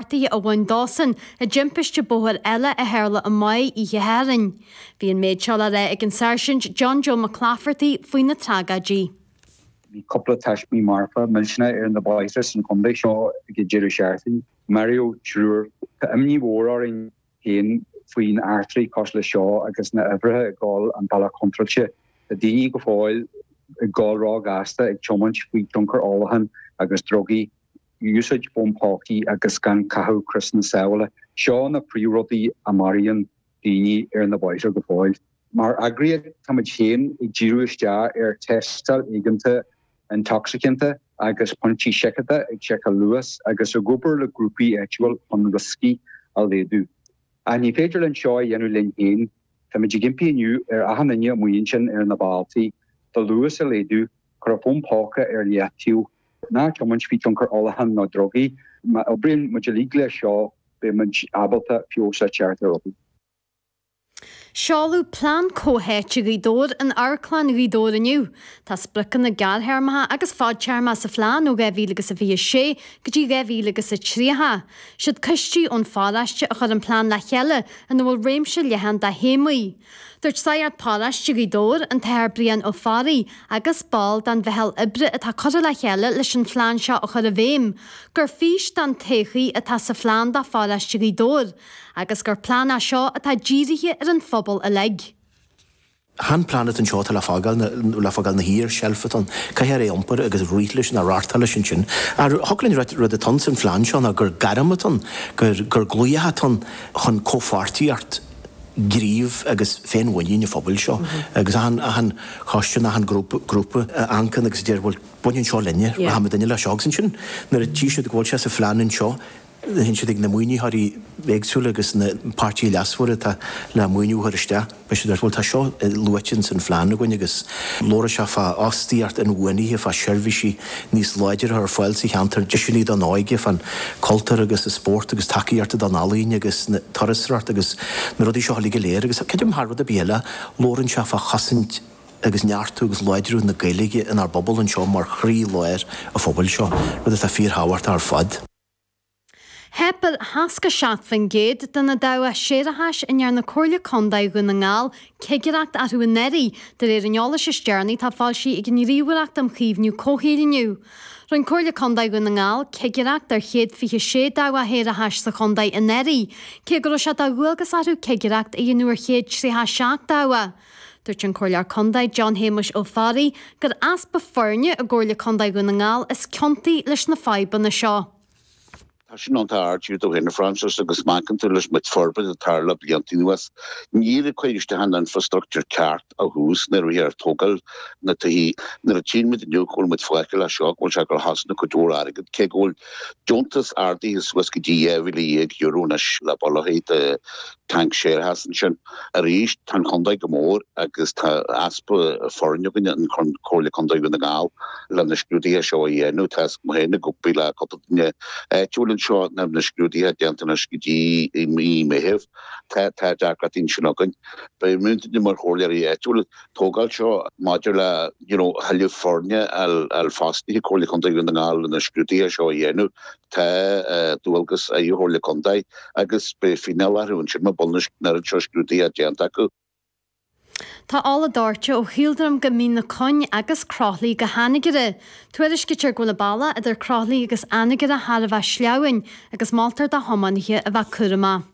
Páirtí amháin dósan, i dtimpiste bóthair eile a tharla i mBaile Uí Thiarnáin. Bhí an méid seo le rá ag an Sáirsint John Joe McClafferty faoi na tragóidí. Bhí cúpla taismí marfa millteanach ar na bóithre san chontae seo ag an deireadh seachtaine. Maraíodh triúr. Tá imní mhór orainn féin faoin eachtraí cosúil leis seo agus na huimhreacha ag dul an bealach contráilte. Tá daoine go fóill ag dul ró ghasta ag tiomáint faoi thionchar ólacháin agus drugaí. úsáid fón pócaí agus gan caitheamh criosanna sábhála, seo na príomhrudaí a maraíonn daoine ar na bóithre go fóill. Mar eagraíocht, táimid féin ag díriú isteach ar thástáil éigeanta intocsaiceanta agus pointí seiceála ag seiceáil luas agus ag obair le grúpaí áitiúil chun rioscaí a laghdú. Ach ní féidir linn seo a dhéanamh linn féin. Táimid ag impí inniu ar achan duine má bhíonn sibh ar na bóithre do luas a laghdú Cuir an fón póca ar leataobh. Ná tiomáint faoi thionchar ólacháin nó drugaí. Má oibríonn muid uilig leis seo, beidh muid ábalta feabhas a chur ar rudaí. Seoladh Plean Comhtháite Ghaoth Dobhair in Amharclann Ghaoth Dobhair inniu. Tá spriocanna gearrthéarmacha agus fadtéarmacha sa phlean ó 2026 go dtí 2030. Siad coistí ón pharóiste a chuir an plean le chéile ina bhfuil réimse leathan de théamaí. Dúirt Sagart Paráiste Ghaoth Dobhair, an tAthair Brian Ó Fearraigh, agus ball den mheitheal oibre atá curtha le chéile leis an phlean seo a chur i bhfeidhm, gur fís don todhchaí atá sa phlean do Pharáiste Ghaoth Dobhair, agus gur plean é seo atá dírithe ar an phobal uilig. Chan plean atá anseo atá le fágáil, le fágáil ina shuí ar sheilf atá ann. Caithfear é a iompar agus rith leis nó reáchtáil leis ansin. Ar thug linn rud, rud atá ann san phlean seo ná gur gairm atá ann, gur, gur glaoch atá ann chun comhpháirtíocht, gnímh agus féinmhuinín an phobail seo agus achan choiste nó achan grúpa a amharcann agus a deir bhuel baineann seo linne, rachaimid ar aghaidh leis seo agus ansin nuair a tchí siad go bhfuil sé sa phlean anseo théann siad ag na maoinitheoirí éagsúla agus na páirtithe leasmhara atá le maoiniú a chur isteach beidh siad ag rá bhuel tá seo luaite in san phlean againn agus labhróidh sé fá fhostaíocht inbhuanaithe, fá seirbhísí. níos láidre ar fáil sa cheantar, deiseanna don óige, fán chultúr agus an spórt agus tacaíocht don ealaín agus an turasóireacht agus na rudaí seo uilig go léir agus creidim thar rud ar bith eile labhrann sé fá chosaint agus neartú agus láidriú na Gaeilge inár bpobal anseo mar chroí lár an phobail seo, rud atá fíor thábhachtach ar fad. Theip ar 67% de na dabhcha séarachais a ndearna Comhairle Contae Dhún na nGall cigireacht orthu anuraidh, de réir an eolais is deireanaí atá foilsithe ag an nGníomhaireacht um Chaomhnú Comhshaoil inniu. Rinne Comhairle Contae Dhún na nGall cigireacht ar 126 dabhach shéarachais sa chontae anuraidh, cé go raibh sé de dhualgas orthu cigireacht a dhéanamh ar 137 dabhach. Dúirt an Comhairleoir Condae John Shéamuis Ó Fearraigh gur easpa foirne i gComhairle Condae Dhún na nGall is ciontaí leis na fadhbanna seo. Tá sin ann, tá Art Hughes Ó hAinifráinsis agus Manchain tú leis mit forbairt a tharla blianta anuas. Níor cuireadh isteach an infrastructur ceart a thús nuair a bhíthear ag tógáil na dtithe. Nuair a tíonn muid inniu go bhfuil muid fágtha le seo go bhfuil sé ag cosaint cuid mhór airgead cé go bhfuil deontas ardaithe suas go dtí €12,000 euro anois le bolaithe de Tank séarachais ansin. Arís, tá an chontae mór agus tá easpa foirne againn i gComhairle Contae Dhún na nGall le na scrúduithe seo a dhéanamh. Tá fhios agam féin ag obair le cúpla duine áitiúil anseo nach mbeidh na scrúduithe déanta anois go dtí i mí Meitheamh. Tá tá deacracht ansin againn. Beidh muidinne mar chomhairleoirí áitiúla ag tógáil seo maidir le you know thuilleadh foirne a fhostú i gComhairle Contae Dhún na nGall le na scrúduithe seo a dhéanamh. Tá dualgas ar Chomhairle Contae agus beidh fíneáil orthu ansin mura mbíonn an oiread seo scrúduithe déanta acu. Tá ola dóirte ó Chaoldroim go Mín na Cuinge agus Croithlí go hAnagaire. Tuairiscítear go bhfuil an bealach idir Croithlí agus Anagaire thar a bheith sleamhain agus moltar do thiománaithe a bheith cúramach.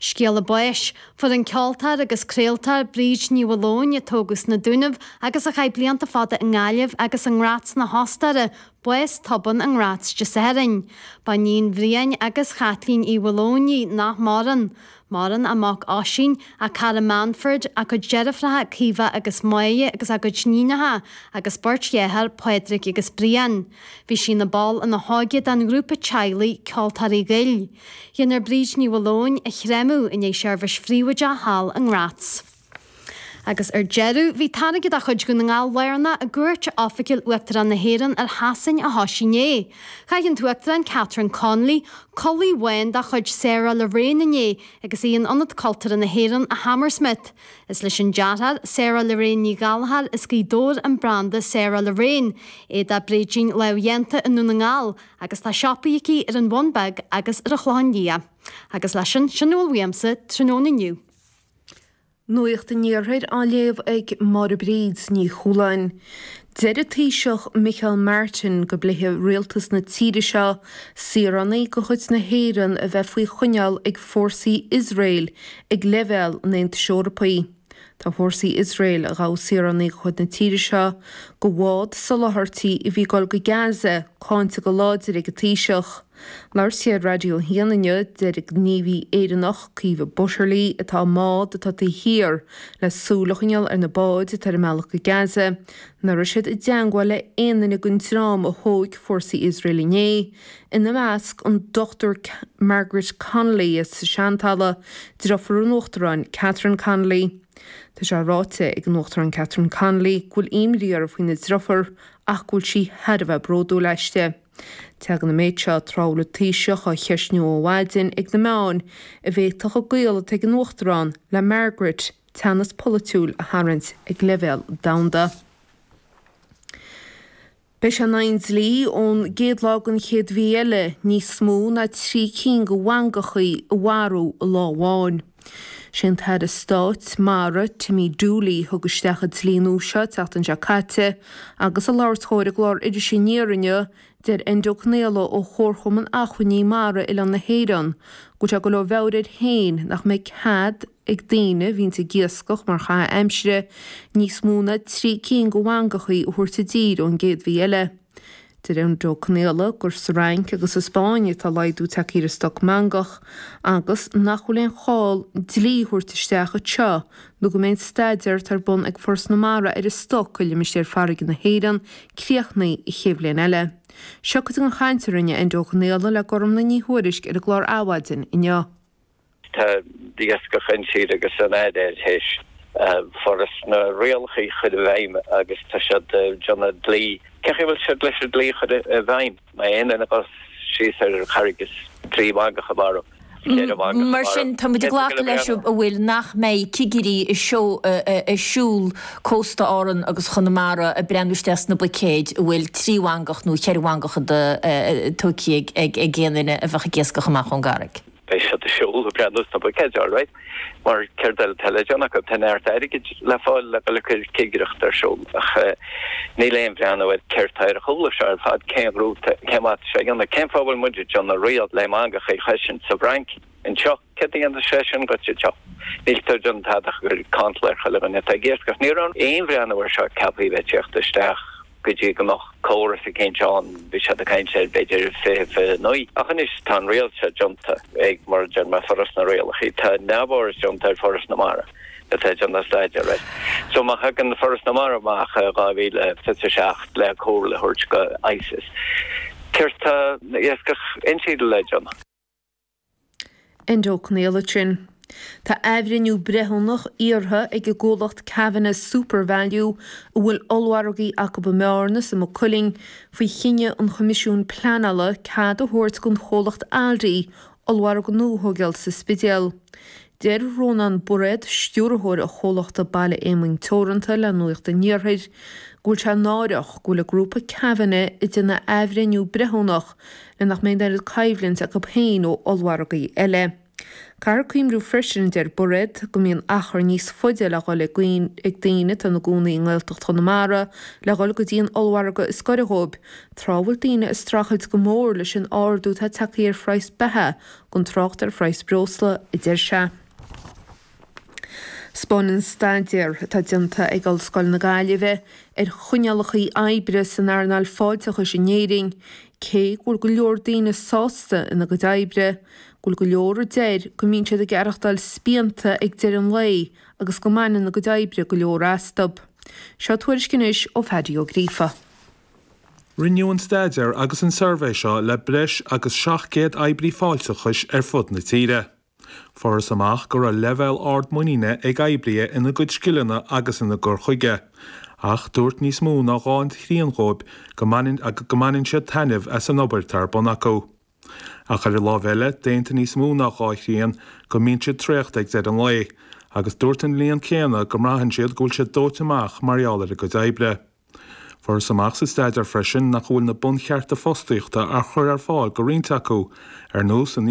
Scéala báis fuair an ceoltóir agus craoltóir Bríd Ní Mhaoileoin, a tógadh sna Dúnaibh agus a chaith blianta fada i nGaillimh agus i nGraz na hOstaire, bás tobann i nGraz Dé Sathairn. Ba iníon Bhriain agus Chaitlín Uí Mhaoileoin í, nach maireann. Maireann a mac Oisín, a cara Manfred, a cuid deirfiúracha Caoimhe agus Máiréad agus a gcuid iníonacha, agus beirt dhearthár, Pádraig agus Brian. Bhí sí ina ball ina hóige den ghrúpa teaghlaigh, Ceoltóirí Ghoill. Déanfar Bríd Ní Mhaoileoin a chréamadh i ndiaidh seirbhís phríobháideach thall i nGraz. Agus ar deireadh, bhí táirge de chuid Dhún na nGall lárnach i gcuairt oifigiúil Uachtarán na hÉireann ar Shasain a thoisigh inné. Chaith an tUachtarán Catherine Connolly culaith bhán de chuid Sarah Lorraine inné agus í in Ionad Cultúrtha na hÉireann i Hammersmith. Is leis an dearthóir, Sarah Lorraine Ní Ghallchóir, as Gaoth Dobhair an branda Sarah Lorraine. Éide bréidín lámhdhéanta i nDún na nGall, agus tá siopaí aicí ar an Bhun Beag agus ar an Chlochán Liath, agus leis sin, sin a bhfuil uaimsa, tráthnóna inniu. Nuacht an Iarthair á léamh ag Máire Bríd Ní Chualáin. Deir an Taoiseach Micheál Martin go bpléifidh rialtas na tíre seo saoránaigh de chuid na hÉireann a bheith faoi choinneáil ag fórsaí Iosrael ag leibhéal an Aontais Eorpaigh. Tá fórsaí Iosrael, a ghabh saoránaigh de chuid na tíre seo de bhád soláthairtí a bhí ag dul go Gaza, cáinte go láidir ag an Taoiseach. Ag labhairt ar Raidió 1 inniu, deir gníomhaí Éireannach, Caoimhe Butterly, atá i mbád atá taobh thiar, le súil a choinneáil ar na báid atá ar a mbealach go Gaza, nach raibh siad i dteangmháil le haon duine den dream a thóig fórsaí Iosrael inné, ina measc an Dr Margaret Connolly as Seantalamh, deirfiúr an Uachtaráin Catherine Connolly. Tá sé ráite ag an Uachtarán Catherine Connolly go bhfuil imní uirthi faoina deirfiúr ach go bhfuil sí thar a bheith bródúil aisti. Tagann an méid seo tráth a bhfuil an Taoiseach á cheistniú ó mhaidin ag na meáin an bhféadfadh an gaol atá ag an Uachtarán le Margaret teannas polaitiúil a tharraingt ag leibhéal domhanda. Beidh sé in aghaidh an dlí ón gcéad lá den chéad mhí eile níos mó ná trí cinn de mhangachaí a mharú i lá amháin. Sé an tAire Stáit, Mara, Timmy Dooley thug isteach an dlí nua seo an tseachtain seo caite agus ag labhairt dhó ar an gclár Iris Aniar inniu, deir Enda Ó Conaola ó Chomharchumann Acmhainní Mara Oileán na hÉireann go bhfuil sé ag goil ó mheabhair air féin nach mbeidh cead ag daoine a bhíonns ag iascach mar chaitheamh aimsire, níos mó ná trí cinn de mhangachaí a thabhairt i dtír ón gcéad mhí eile. Deir Enda Ó Conaola gur sa Fhrainc agus sa Spáinn atá laghdú tagtha ar an stoc mangach agus nach bhfuil aon chall dlí a thabhairt isteach anseo nó go mbeidh an staidéar atá ar bun ag Foras na Mara ar an stoc i limistéir farraige na hÉireann críochnaithe an chéad bhliain eile. Seo cuid den chaint a rinne Enda Ó Conaola le Gormfhlaith Ní Thuairisg ar an gclár Adhmhaidin inniu. Tá Iascach Intíre agus an fhaid air théis foras na rialacha a chur i bhfeidhm agus tá siad ag déanamh an dlí. Cé chaoi a bhfuil siad leis an dlí a chur i bhfeidhm? Má tá aon duine ag goil síos ar charraig is trí mhangach a mharú, is ceithre mhangach a mharú. Mar sin, tá muid ag glacadh leis, an bhfuil, nach mbeidh cigirí ag siúl cósta Árann agus Chonamara ag breathnú isteach sna buicéid an bhfuil trí mhangach nó cheithre mhangach tógtha ag aon duine a bheadh ag iascach amach ón gcarraig. Beidh siad ag siúl ag breathnú sna buicéid, alright, mar céard eile atá le déanamh acu? Tá neart airgid le fáil le dul ag cur cigireacht ar siúl ach níl aon bhreathnú ar céard tá ar a chúla. Seo ar fad cén rúta, cén mhaith atá sé a dhéanamh? Cén fáth a bhfuil muid ag déanamh riail le mangachaí a chosaint sa bhFrainc? Anseo? Céard a dhéanfas sé sin duit anseo? Níl tú ag déanamh tada ach ag cur cantal ar chuile dhuine atá ag iascach. Ní raibh aon bhreathnú ar seo ceaptha a bheith ag tíocht isteach. go dtí go mbeadh córas eicínt ann, bhí siad ag caint ar b'fhéidir 2029, ach anois tá an riail seo déanta ag, mar a deir mé, Foras na Rialacha, tá neamhfhoras déanta ar Foras na Mara atá ag déanamh staidéar air. So má thagann Foras na Mara amach i 2027 le comhairle a thabhairt go ICES, céard tá Iascach Intíre le déanamh? Enda Ó Conaola ansin. Tá athbhreithniú breithiúnach iarrtha ag an gcomhlacht Kavanagh's Supervalu, a bhfuil ollmhargaí acu i mBearna is i Maigh Cuilinn, faoi chinneadh an Choimisiúin Pleanála cead a thabhairt don chomhlacht Aldi ollmhargadh nua a thógáil sa Spidéal. Deir Rónán Bairéad, stiúrthóir an chomhlachta Baile Éamoinn Teoranta le Nuacht an Iarthair, go bhfuil sé náireach go bhfuil an grúpa Kavanagh ag déanamh athbhreithniú breithiúnach le nach mbeidh an oiread coimhlint acu féin ó ollmhargaí eile. Caithfear cuimriú freisin, a deir Bairéad, go mbíonn achar níos faide le dhul ag daoine atá ina gcónaí i nGaeltacht Chonamara le dhul go dtí an ollmhargadh is gaire dhóibh, tráth a bhfuil daoine ag streachailt go mór leis an ardú atá ag teacht ar phraghas beatha gan trácht ar phraghas breosla, a deir sé. 'Spáineann staidéar atá déanta ag Ollscoil na Gaillimhe ar choinníollacha oibre san earnáil fáilteachais in Éirinn cé go bhfuil go leor daoine sásta ina gcuid oibre, go bhfuil go leor a deir go mbíonn siad ag aireachtáil spíonta ag deireadh an lae agus go mbaineann a gcuid oibre go leor astu. Seo tuairisc anois ó Phaddy Ó Gríofa. Rinneadh an staidéar agus an suirbhé seo le breis agus 700 oibrí fáilteachais ar fud na tíre. Fuarthas amach go raibh leibhéal ard muiníne ag oibríthe ina gcuid scileanna agus ina gcur chuige, ach dúirt níos mó ná dhá thrian dhóibh go mbaineann siad taitneamh as an obair atá ar bun acu. Ach ar an láimh eile, d'aontaigh níos mó ná dhá thrian go mbíonn siad traochta ag deireadh an lae, agus dúirt an líon céanna go mbraitheann siad go bhfuil siad dóite amach mar gheall ar a gcuid oibre. Fuarthas amach sa staidéar freisin nach bhfuil na bunchearta fostaíochta á chur ar fáil do roinnt acu, ar nós an